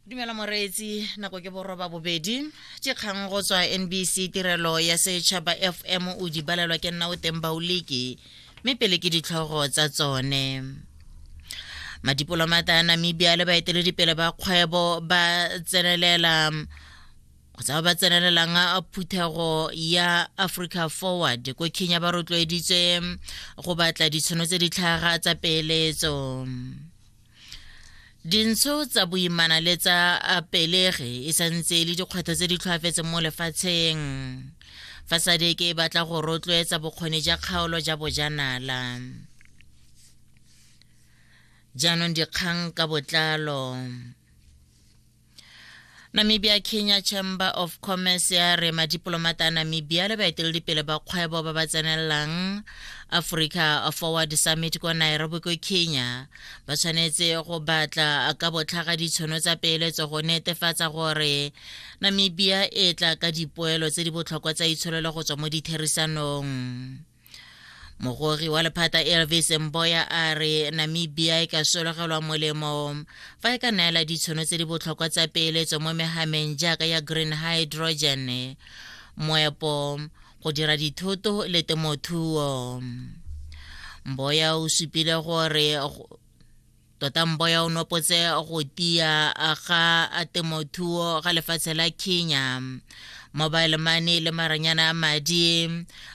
dumela moreetsi nako ke boroba bobedi ke kgang go tswa nbc tirelo ya setšhaba fm o di balelwa ke nna o teng baoliki mme pele ke ditlhogo tsa tsone madipolomata a namibia le baeteledipele ba kgwebo ba tsenelela kgotsa ba ba tsenelelang phuthego ya africa forward ko kenya ba rotloeditswe go batla ditshono tse di tlhaga tsa peeletso dintsho tsa boimana le tsa pelege e santse e le dikgwetlho tse di tlhoafetseng mo lefatsheng fa sadeke e batla go rotloetsa bokgoni ja kgaolo ja bojanala jaanong dikgang ka botlalo namibia kenya chamber of commerce ya re madipolomata a namibia le baeteledipele ba kgwebo ba ba tsenelelang africa forward summit kwa nairobi ko kenya ba tshwanetse go batla ka botlhaga ditshono tsa peeletso go netefatsa gore namibia e tla ka dipoelo tse di botlhokwa tsa itsholelo go tswa mo ditherisanong mogori wa lephata elvis mboya a re namibia e ka sologelwa molemo fa e ka neela ditshono tse di botlhokwa tsa peeletso mo megameng jaaka ya green hydrogen moepo go dira dithoto le temothuo mboya o supile gore tota mboya o nopotse go tia ga temothuo ga lefatshe la kenya mobile money le maranyana a madi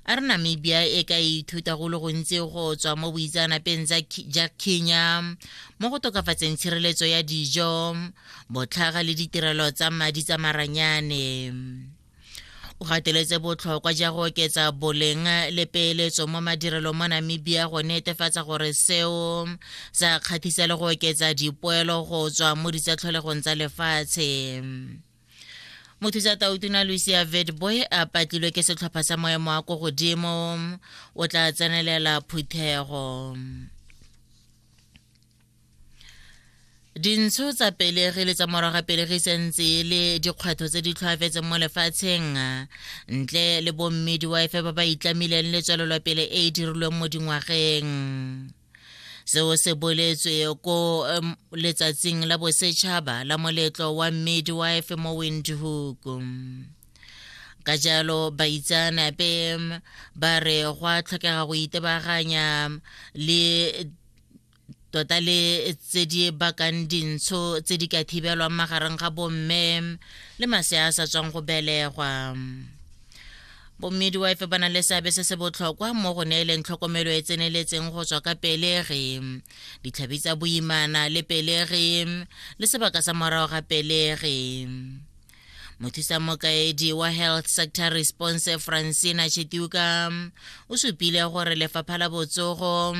a re namibia e ka ithuta go le gontsi go tswa mo boitsanapeng ja kenya mo go tokafatseng tshireletso ya dijo botlhaga le ditirelo tsa madi tsa maranyane o gateletse botlhokwa ja go oketsa boleng le peeletso mo madirelong mo namibia go netefatsa gore seo sa kgathisa le go oketsa dipoelo go tswa mo ditsatlholegong tsa lefatshe mothusa tautuna lucia vedboy a patlilwe ke setlhopha sa moemo wa ko godimo o tla tsenelela phuthego dintsho tsa pelegi le tsa morago ga pelegi sentse e le dikgwetlho tse di tlhoafetseng mo lefatsheng ntle le bommedi wa efe ba ba itlamileng le tswelelopele e e dirilweng mo dingwageng seo se boletswe ko letsatsing la bosetšhaba la moletlo wa mmedi wa efe mo windhoek ka jalo baitseanape ba re go a tlhokega go itebaganya le tota le tse di bakang dintsho tse di ka thibelwang magareng ga bomme le masea a sa tswang go belegwa bommidwife ba na le seabe se se botlhokwa mo go neeleng tlhokomelo e tseneletseng go tswa ka pelegi ditlhabi tsa boimana le pelegi le sebaka sa morago ga pelegi mothusa mokaedi wa health sector response francina chetiuka o supile gore lefapha la botsogo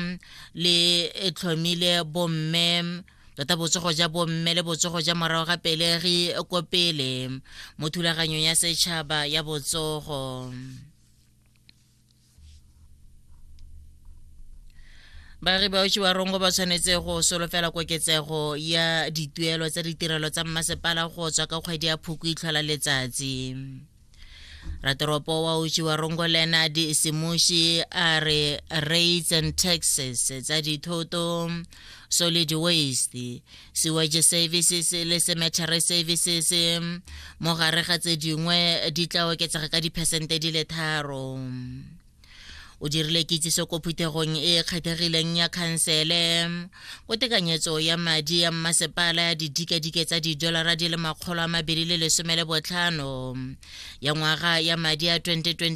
le tlhomile bomme tota botsogo ja bomme le botsogo ja morago ga pelegi ko pele mo thulaganyong ya setšhaba ya botsogo baagi ba otsiwa rongo ba tshwanetse go solofela koketsego ya dituelo tsa ditirelo tsa mmasepala go tswa ka kgwedi ya phoko itlhola letsatsi ratoropo wa uchiwa rongo leonard semushi a re rates and taxes tsa dithoto solid waste sewage services le cemetery services mo gare ga tse dingwe di tla oketsega ka diphesente di le tharo o dirile kitsiso ko phuthegong e e kgethegileng ya khansele ko tekanyetso ya madi ya mmasepala ya didikadike tsa didolara di le makgolo a mabedi le lesome le botlhano ya ngwaga ya madi ya 2026